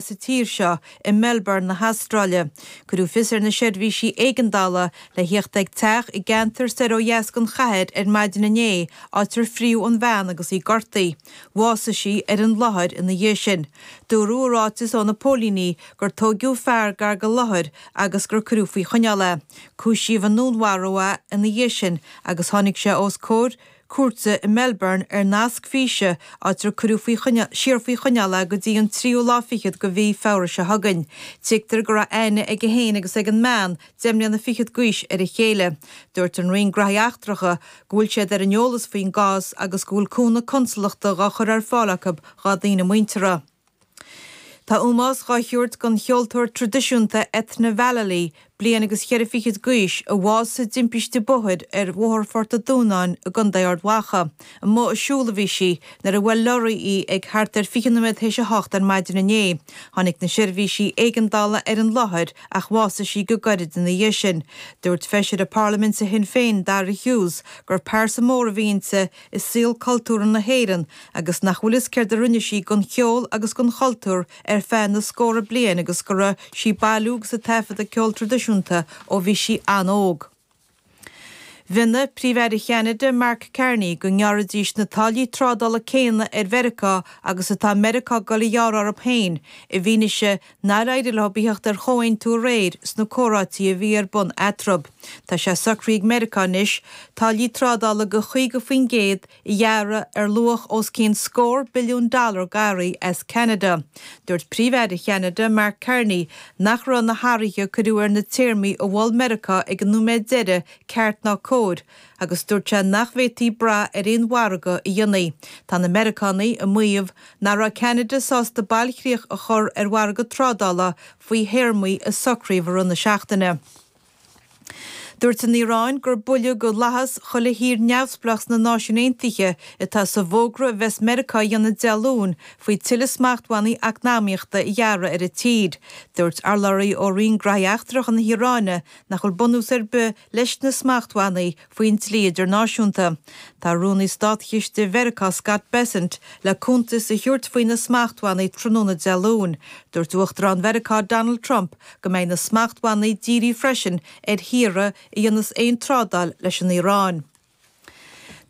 sa tír seo, i Melbourne na hAstráile. Cuireadh fios ar na seirbhísí éigeandála le theacht ag teach i gceantar soir ó dheas den chathair ar maidin inné, áit ar fríodh an bhean agus í gortaí. Bhásaigh sí ar an láthair ina dhiaidh sin. Dúradh i ráiteas ó na póilíní gur tóigeadh fear gar go láthair agus gur cuireadh faoi choinneáil é. Cúisíodh i ndúnmharú é ina dhiaidh sin agus tháinig sé os comhair na. cúirte i Melbourne ar nasc físe, áit ar cuireadh siar faoi choinneáil é go dtí an tríú lá fichead de mhí Feabhra seo chugainn. Tuigtear go raibh aithne aige féin agus ag an mbean, deich mbliana fichead d'aois, ar a chéile. Dúirt an Roinn Graithí Eachtracha go bhfuil siad ar an eolas faoin gcás agus go bhfuil cúnamh consalachta dhá chur ar fáil acu dhá daoine muinteartha. Tá ómós dhá thabhairt don cheoltóir tradisiúnta Eithne Vallely, bliain agus cheithre fichid gaois, a bhásaigh i dtimpiste bóthair ar Bhóthar Phort a' Dúnáin i gContae Ard Mhacha. I mbun a siúl a bhí sí nuair a bhuail lorraí í ag thart ar fiche noiméad théis a hocht ar maidin inné. Tháinig na seirbhísí éigeandála ar an láthair ach bhásaigh sí go gairid ina dhiaidh sin. Dúirt feisire Parlaiminte Shinn Féin, Daire Hughes, gur pearsa mhór a bhí inti, i saol cultúrtha na hÉireann agus nach bhfuil fhios céard a rinne sí don cheol agus don chultúr ar feadh na scóra bliain agus go raibh sí ag bailiú agus ag taifeadadh ceol tradisiúnta ó bhí sí an-óg. Mhionnaigh Príomh-Aire Cheanada, Mark Carney, go ngearrfaidís na táillí trádála céanna ar Mheiriceá agus atá Meiriceá ag dul a ghearradh orthu féin, i bhfianaise Nár éirigh leo a theacht ar chomhaontú aréir sna comhráití a bhí ar bun eatarthu. Tá sé socraithe ag Meiriceá anois táillí trádála de 50% a ghearradh ar luach os cionn scór billiún dollar d'earraí as Ceanada. Dúirt Príomh-Aire Cheanada, Mark Carney, nach raibh na hathruithe a cuireadh ar na téarmaí a mhol Meiriceá ag an nóiméad deiridh ceart ná cóir agus dúirt sé nach bhféadfaí brath ar aon mhargadh a dhéanfaí. Tá na Meiriceánaigh ag maíomh nach raibh Ceanada sásta bailchríoch a chur ar mhargadh trádála faoi théarmaí a socraíodh i rith na seachtaine. Dúirt an Iaráin gur buille go fhlaitheas chuile thír neamhspleách sna Náisiúin Aontaithe atá sa bhfógra a bheas Meiriceá a dhéanamh Dé Luain faoi tuilleadh smachtbhannaí eacnamaíochta a ghearradh ar an tír. Dúirt urlabhraí ó Roinn Graithí Eachtracha na hIaráine nach bhfuil bunús ar bith leis na smachtbhannaí faoin dlí idirnáisiúnta. Tá Rúnaí Státchiste Mheiriceá Scott Bessent le cuntas a thabhairt faoi na smachtbhannaí tráthnóna Dé Luain. Dúirt Uachtarán Mheiriceá Donald Trump go mbeidh na smachtbhannaí dírí freisin ar thíortha a dhéanas aon trádáil leis an Iaráin.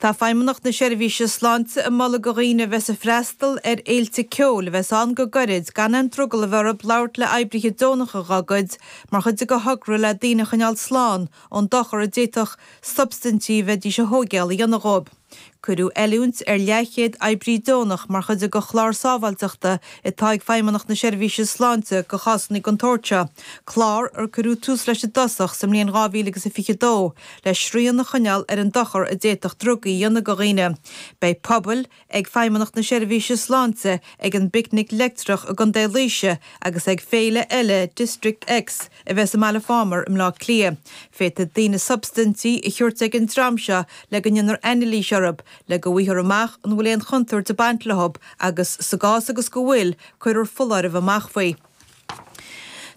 Tá Feidhmeannacht na Seirbhíse Sláinte ag moladh do dhaoine a bheas ag freastal ar fhéilte ceoil a bheas ann go gairid gan aon drogall a bheith orthu labhairt le hoibrithe deonacha dá gcuid mar chuid de thogra le daoine a choinneáil slán ón dochar a d'fhéadfadh substaintí a bheidís a thóigéail a dhéanamh dhóibh. Cuireadh oiliúint ar leathchéad oibrí deonach mar chuid de chlár sábháilteachta atá ag Feidhmeannacht na Seirbhíse Sláinte do chásanna den tsórt seo, clár ar cuireadh tús leis i dtosach sa mbliain 2022 le srian a choinneáil ar an dochar a d'fhéadfadh drugaí a dhéanamh do dhaoine. Beidh puball ag Feidhmeannacht na Seirbhíse Sláinte ag an bPicnic Leictreach i gContae Laoise agus ag féile eile District X a bheas i mBaile Phámar i mBleá Cliath. Féadfaidh daoine substaintí a thabhairt ag an dream seo le go ndéanfar anailís orthu, le go bhfaighthear amach an bhfuil aon chontúirt ag baint leo agus, sa gcás agus go bhfuil, cuirfear foláireamh amach faoi.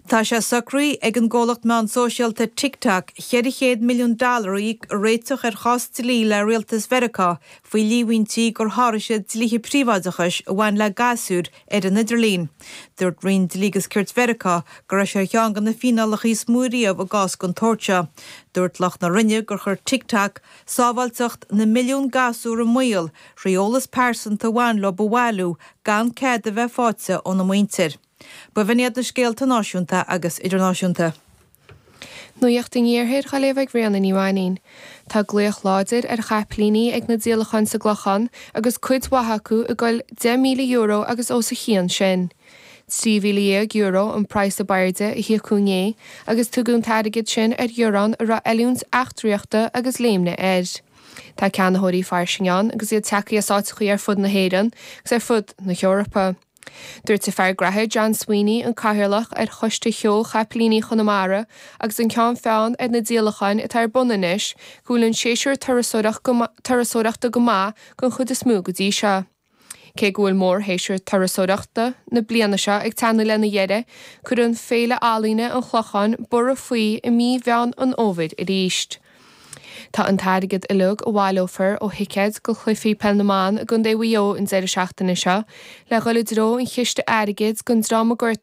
Tá sé socraithe ag an gcomhlacht meán sóisialta TikTok 400 milliún dollar a íoc le réiteach ar chás dlí le rialtas Mheiriceá faoi líomhaintí gur sháraigh siad dlíthe príobháideachais a bhain le gasúir ar an idirlíon. Dúirt Roinn Dlí agus Cirt Mheiriceá go raibh sé ar cheann de na fíneálacha is mó riamh i gcás den tsórt seo. Dúirt lucht na Roinne gur chuir TikTok Sábháilteacht na milliún gasúr i mbaol, trí eolas pearsanta a bhain leo a bhailiú gan cead a bheith faighte óna muintir. B'in iad na scéalta náisiúnta agus idirnáisiúnta. Nuacht an iarthair Dé Luain ag Ríona Ní Mhainín. Tá glaoch láidir ar chapaillíní ag na díolacháin sa gClochán agus cuid mhaith acu ag goil €10,000 agus os a chionn sin. €13,000 an praghas ab airde a híocadh inné agus tugadh an t-airgead sin ar ghearrán a raibh oiliúint eachtraíochta agus léimne air. Tá ceannaitheoirí fairsing ann agus iad tagthaí as áiteachaí ar fud na hÉireann agus ar fud na hEorpa. Dúirt an fear gnaithe John Sweeney, an cathaoirleach ar Choiste Sheó Chapaillíní Chonamara agus an ceann feadhain ar na díolacháin atá ar bun anois, go bhfuil an séasúr turasóireachta go maith den chuid is mó go dtí seo. Cé go bhfuil mórshéasúr turasóireachta na bliana seo ag teannadh lena dheireadh, cuireann Féile Ealaíne an Chlocháin borradh faoi i mí Mheán an Fhómhair arís. Tá an t-airgead uilig a bhaileofar ó thicéid do chluichí Peil na mBan i gContae Mhaigh Eo an deireadh seachtaine seo le dhul i dtreo an chiste airgid don dream a gortaíodh